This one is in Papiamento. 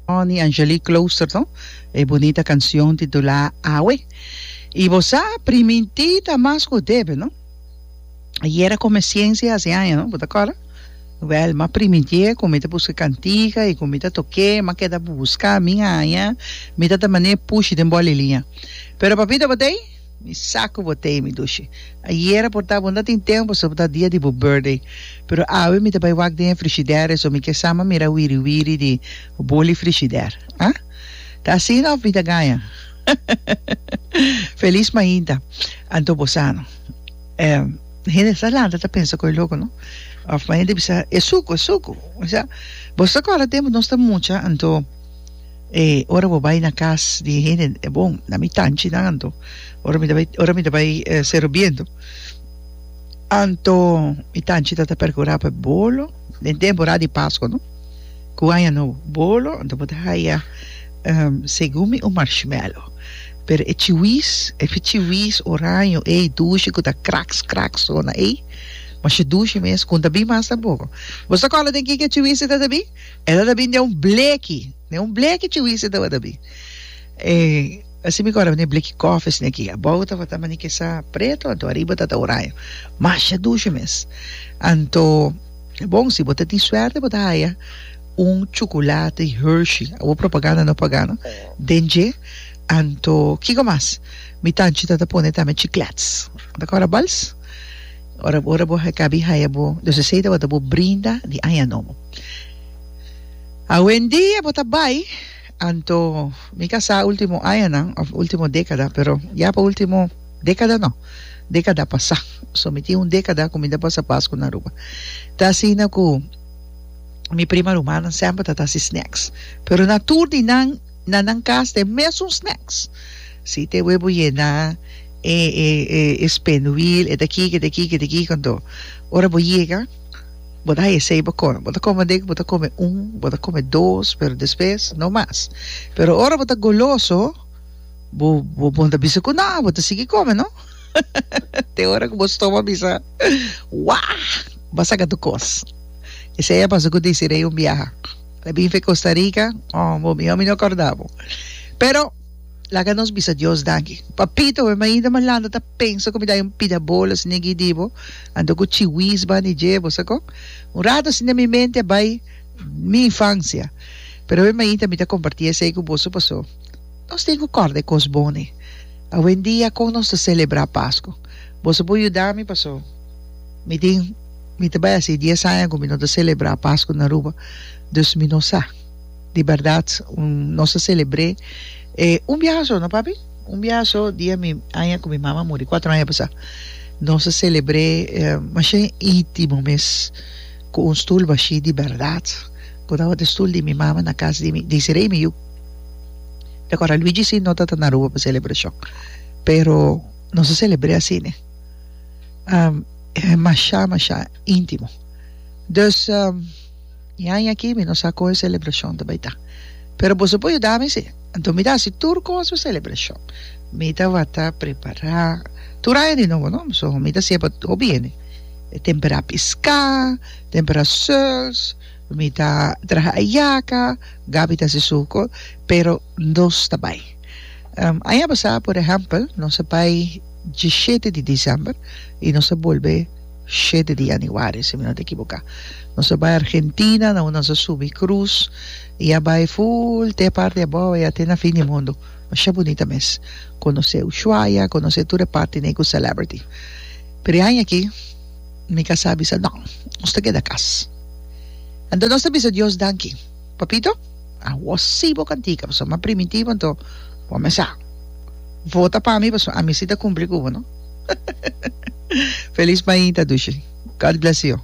Ronnie Angelique Klooster no e bunita cancion titulá Awe i bo sa primintí ta mas cu debe no ayera cu mi ciencia haci aña no bo ta acorda wel ma primintié cu mi ta busca cantica i cu mi ta toke ma keda busca mi aña mi ta ta manera pushi den bolilia pero papito batey Mi sa cu bo ta ey, mi dushi. Ayera por ta bo no ta tin tempo so bo ta dia di bo birthday. Pero awe mi ta bay wak den e frigider eso mi ke sa ma mira wiri wiri di boli frigider. Ha? Ta asina of mi ta gaña? Feliz mainta. Anto bo sa no. E hende sa lanta ta pensa cu e loco no. Of ma hende bisa e sucu, e sucu. Bo sa acorda tempo nos ta mucha anto. E ora bo bai na cas di e hende e bon na mi tanchi nan anto ora mi ta bai ora mi ta bai eh, Cerro Biento anto mi tanchi ta ta percura pa e bolo den temporada di Pascua no cu Aña Nobo bolo anto bo ta haya ehm segun mi un marshmallow pero e chiwis e fi chiwis oraño ey dushi cu ta cracks cracks sona ey masha dushi mes con ta bin mas na boca bo sa cola den kin ki e chiwis ta ta bin? El a tabin den un bleki, den un bleki chiwis e tabata bin. E así mi kòrda, ne bleki kòf esne aki. Abou tabata mani ke sa preto, anto ariba tabata oraño. Masha dushe mes. Anto, bon, si bo ta tin suerte bo ta haya un chukulati Hershey, awo propaganda no paga no, den dje. Anto, kiko mas? Mi tanchi tabata pone tambe chiklèts. Bo ta kòrda bals? Ora bo ora bo heka bi haya bo dosesei tabata bo brinda di aña nobo. Awendia bo ta bai anto mi ka sa ultimo añanan of ultimo dekada pero ya pa ultimo dekada no dekada pasa so mi tin un dekada ku mi ta pasa Pasku na Aruba ta asina ku mi prima rumannan semper ta ta hasi snacks pero na tur di nan Na nan cas t'e mesun snacks. Si t'e webo yena e e e spinwheel e d'aqui que d'aqui que d'aqui cuando ora bo yega bo ta haye esey bo come bo ta come dek bo ta come un bo ta come dos pero despues no mas pero ora bo ta goloso bo bo bon ta bisa cu no bo ta sigui come no te ora cu bo stoma bisa wah ba saca tu cos esey a pasa cu Desiree un biaha. La bife Costa Rica oh bo mijo mi no corda bo pero laga nos bisa Dios danki papito we mainda malanda ta pensa cu mi dai un pida bolo asina aquí di bo anto cu chiwis ban y dje bo sa con un rato asina mi mente a bai mi infancia pero we mainta mi ta comparti esey cu boso paso nos tin cu corda e cos bon e awendia con nos ta celebra Pascu boso por yudami paso mi tin Mi ta bai hasi dies aña ku mi no ta selebrá Pasku na Aruba, dus mi no sa di bèrdat nos a selebr'é e un biaha so, no papi? Un biaha so dia mi aña ku mi mama muri kuatro aña pasá. Nos a selebr'é masha intimo mes ku un stul bashí di bèrdat ku tabata e stul di mi mama na kas di mi Desiree i mi yu. Te akorda Luigi si no ta ta na Aruba pa selebrashon pero nos a selebr'é asina. Um, e masha masha intimo. Dus, um, e aña aki mi no sa kon e celebracion ta bai ta. Pero boso por yuda mi si. Anto mi ta haci tur cos pa celebracion. Mi ta wata prepara tur aña di nobo no. So, mi ta siña pa hopi hende. E tempera pisca, tempera seuls, mi ta traha ayaca, Gaby ta haci su cos, pero nos ta bai. Um, aña pasa, por ehempel, nos a bai. Djishete di December y nos a bolbe shete di Januari si mi no ta ekiboka. Nos a bay Argentina na un nos a subi cruz y a bay full te parti abou y ate na fin di mundo. Masha bunita mes. Conoce Ushuaia, conoce tur e parti n'ey cu celebrity. Pero e aña aki mi casa a bisa no, nos ta keda cas. Anto nos ta bisa Dios danki. Papito, awor sí bo cantica pasobra bo a primitivo anto bo a mesa. Vota pa mi pasobra ami sí ta cumpli cu bo, no? Feliz mainta, Dushi. God bless you.